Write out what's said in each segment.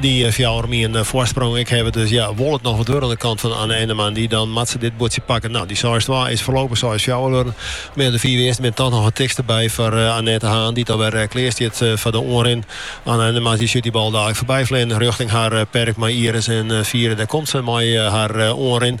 Dy fjouwer om ien foarsprong. Ik haw it dus, ja, wol it noch wat wurde oan de kant fan Anna Ennema. Dy dan moat se dit buordsje pakken. No, dy seis twa is foarlopich seis fjouwer wurden. Mar ja, de fiif earsten binne toch noch it tichtste by foar Annet de Haan, dy't alwer klear stiet foar de oanrin. Anna Ennema dy sjut dy bal daliks foarby fleanen rjochting har perk mei Iris en Fiera. Dêr komt se mei har oanrin.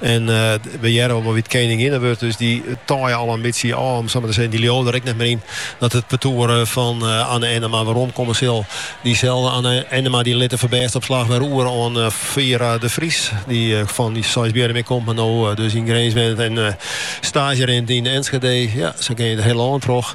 En we hearre al wol wa't keninginne wurdt. Dus dy taaie al in bytsje ôf, om it sa mar te sizzen. Dy leauwe der ek net mear yn dat it partoer fan Anna Ennema weromkomme sil. Dyselde Anna Ennema dy lit de foarbêstopslach wer oer oan Fiera de Vries, dy fan Seisbierrum ek komt, mar no dus yn Grins wennet en staazje rint yn Enschede. Ja, sa gean je it hiele lân troch.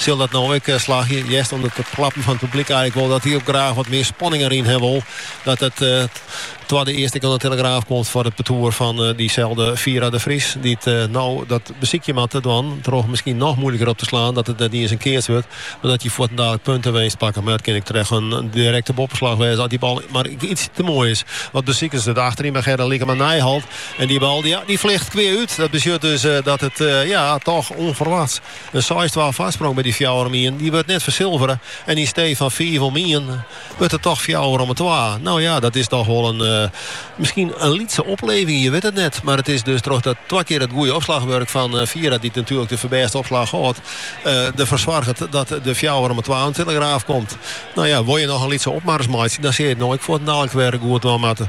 Sil dat no ek slagje? Hearst oan it klappen fan it publyk eigenlik wol dat hy ek graach wat mear spanning deryn ha wol. Dat it twadde earst ek oan de telegraaf komt foar it partoer fan dyselde Fiera de Vries, dy't no dat besykje moat te dwaan troch miskien noch moeilijker op te slaan dat it net iens in keats wurdt, mar dat je fuortendaliks puntewinst pakke. Mar dat kin ek troch in direkte boppeslach wêze as dy bal mar iets te moai is. Wat besiket se it achteryn by Gerde Lycklama à Nijeholt en dy bal, ja, dy fljocht kwea út. Dat betsjut dus dat it, ja, toch ûnferwachts. In seis-twa foarsprong by dy fjouwer om ien, dy wurdt net fersilvere en yn stee fan fiif om ien wurdt it toch fjouwer om twa. No ja, dat is toch wol miskien in lytse opleving, je wit it net. Mar it is dus troch dat twa kear it goede opslachwurk fan Fiera, dy't natuerlik de foarbêste opslach hâldt, derfoar soarget dat de fjouwer om twa oan de telegraaf komt. No ja, wol je noch in lytse opmars meitsje, dan sil je it no ek fuortendaliks wer goed dwaan moatte.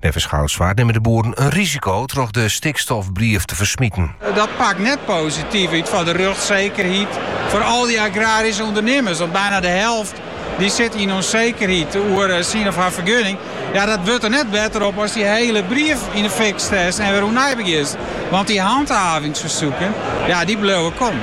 Neffens Goudswaard nimme de boeren in risiko troch de stikstofbrief te fersmiten. Dat pakt net posityf út foar de rjochtssekerheid foar al dy agraryske ûndernimmers. Want byna de helft dy sit yn ûnsekerheid oer syn of har fergunning. Ja, dat wurdt der net better op ast dy hiele brief yn de fik stekst en wer oernij begjinst. Want dy hanthavingsfersoeken, ja, dy bliuwe kommen.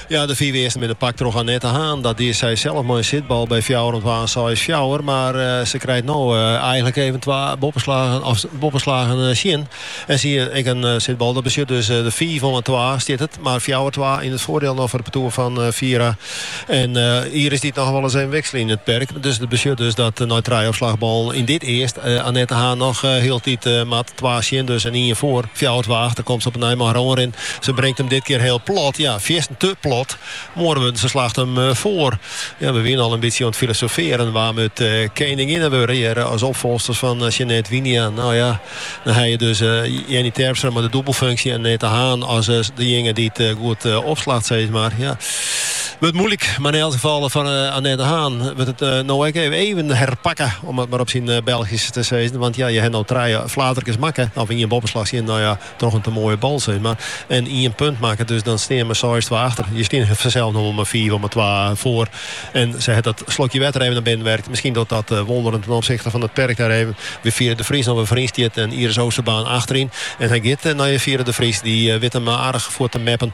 Ja, de fiif earsten binne pakt troch Annet de Haan. Dat die sy sels mei in sitbal by fjouwer om twa en seis fjouwer. Mar se krijt no eigenlik even twa boppeslagen tsjin. En sy ek in sitbal. Dat betsjut dus de fiif om twa stiet it. Mar fjouwer twa yn it foardiel no foar it partoer fan Fiera en Iris dy't noch wolris even wikselje yn it perk. Dus dat betsjut dus dat nei trije opslachballen yn dit earst Annet de Haan noch hieltyd moat. Twa tsjin dus en ien foar. Fjouwer twa achter, komt se op 'e nij mei har oanrin. Se bringt him dit kear hiel plat. Ja, fierstend te plat. Mei oare wurden se slacht him foar. Ja, we wiene al in bytsje oan it filosofearjen wa't we it keninginne wurde hearre as opfolchsters fan Sjanet Wijnia. No ja, dan hawwe je dus Jennie Terpstra mei de dûbelfunksje en Annet de Haan as dejinge dy't goed opslacht, sis mar. Ja. Wurdt moeilik, mar yn elk gefal foar Annet de Haan wurdt it no ek even herpakke, om it mar op syn Belgysk te sizzen. Want ja, je ha no trije flaterkes makke, of ien boppeslach tsjin, no ja, troch in te moaie bal sis mar, en ien punt makke. Dus dan stean we seis twa achter. Je stiene fansels no wol mar fiif om 'e twa foar. En sa hat dat slokje wetter even nei binnen werkt. Miskien docht dat wonderen ten opsichte fan it perk dêr even wêr't Fiera de Vries no wer foaryn stiet en Iris Oosterbaan achteryn. En hy giet nei Fiera de Vries. Dy wit him aardich fuort te meppen.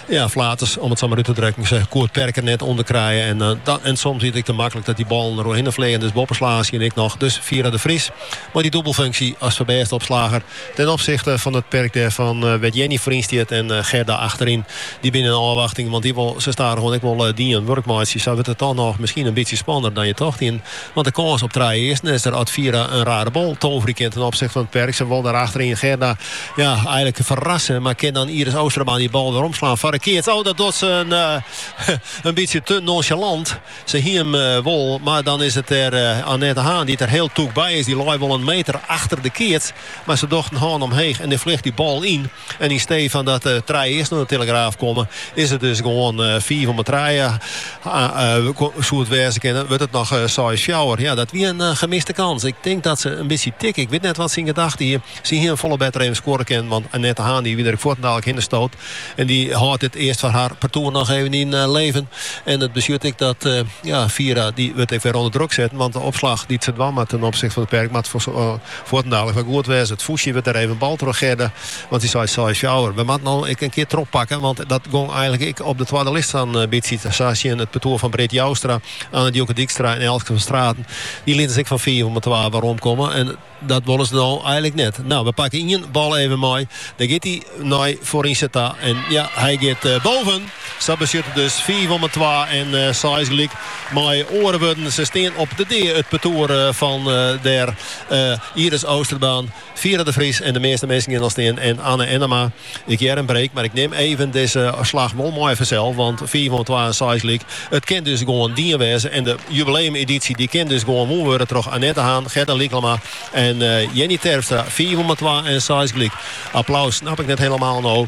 Ja, flaters, om it sa mar út te drukken. Se koe it perk der net ûnder krije. En, eh, en soms is it ek te maklik dat dy ballen der oerhinne fleagen. Dus boppeslaggen sjen ik noch. Dus Fiera de Vries mei dy dûbelfunksje as foarbêst opslager ten opsichte fan it perk dêr fan, eh, wêr't Jennie foaryn stiet en eh, Gerda achteryn. Dy binne yn ôfwachting, want dy wol sa stadichoan ek wol eh, dien wurk meitsje. Sa wurdt it toch noch miskien in bytsje spannender dan je tocht. Yn Want de kâns op trije earsten is der as Fiera in rare bal toverje kin ten opsichte fan it perk. Se wol dêr achteryn Gerda ja, eigenlik ferrasse, mar kin dan Iris Oosterbaan dy bal weromslaan foar de keats. Oh, dat docht se in, in bytsje te nonchalant. Se hie him wol, mar dan is it dêr Annet de Haan dy't der hiel tûk by is. Dy lei wol in meter achter de keats, mar se docht in hân omheech en dêr fljocht dy bal yn. En yn stee fan dat er trije earsten oan de telegraaf komme, is it dus gewoan eh, fiif om trije eh, soe it wêze kinne, wurdt it noch eh, seis fjouwer. Ja, dat wie in gemiste kâns. Ik tink dat se in bytsje tikke. Ik wit net wat se yn gedachten hie. Se hie him folle better even skoare kinnen, want Annet de Haan dy wie der ek fuortendaliks hinne stood. En dy hâldt dit earst foar har partoer noch even yn leven. En it betsjut ek dat ja, Fiera dy wurdt ek wer ûnder druk setten, want de opslach dy't se dwaan moat ten opsichte fan it perk, moat fuort Fuortendaliks wer goed wêze. It fûstje wurdt dêr even bald troch Gerda, want dy seit seis fjouwer. We moatte no ek in kear trochpakke, want dat gong eigenlik ek op de twadde list in bytsje sa tsjin it partoer fan Britt Joustra, Anna-Dieuwke Dijkstra en Elske van Straten. Dy lieten se ek fan fiif om 'e twa weromkomme en dat wolle se no eigenlik net. No, we pakke ien bal even mei. Dêr giet dy nei foarynse ta en ja, hy giet boven! Sa betsjut it dus fiif om 'e twa en seis gelyk. Mei oare wurden, se stean op de dea it partoer fan dêr Iris Oosterbaan, Fiera de Vries en de measte minsken gean al stean en Anna Ennema. Ik hear in break, mar ik nim even dizze slach wol mei fansels, want fiif om 'e twa en seis gelyk. It kin dus gewoan dien wêze en de jubileumedysje dy kin dus gewoan wûn wurde troch Annet de Haan, Gerda Lycklama en Jennie Terpstra. Fiif om 'e twa en seis gelyk. Applaus snap ik net hielemaal no.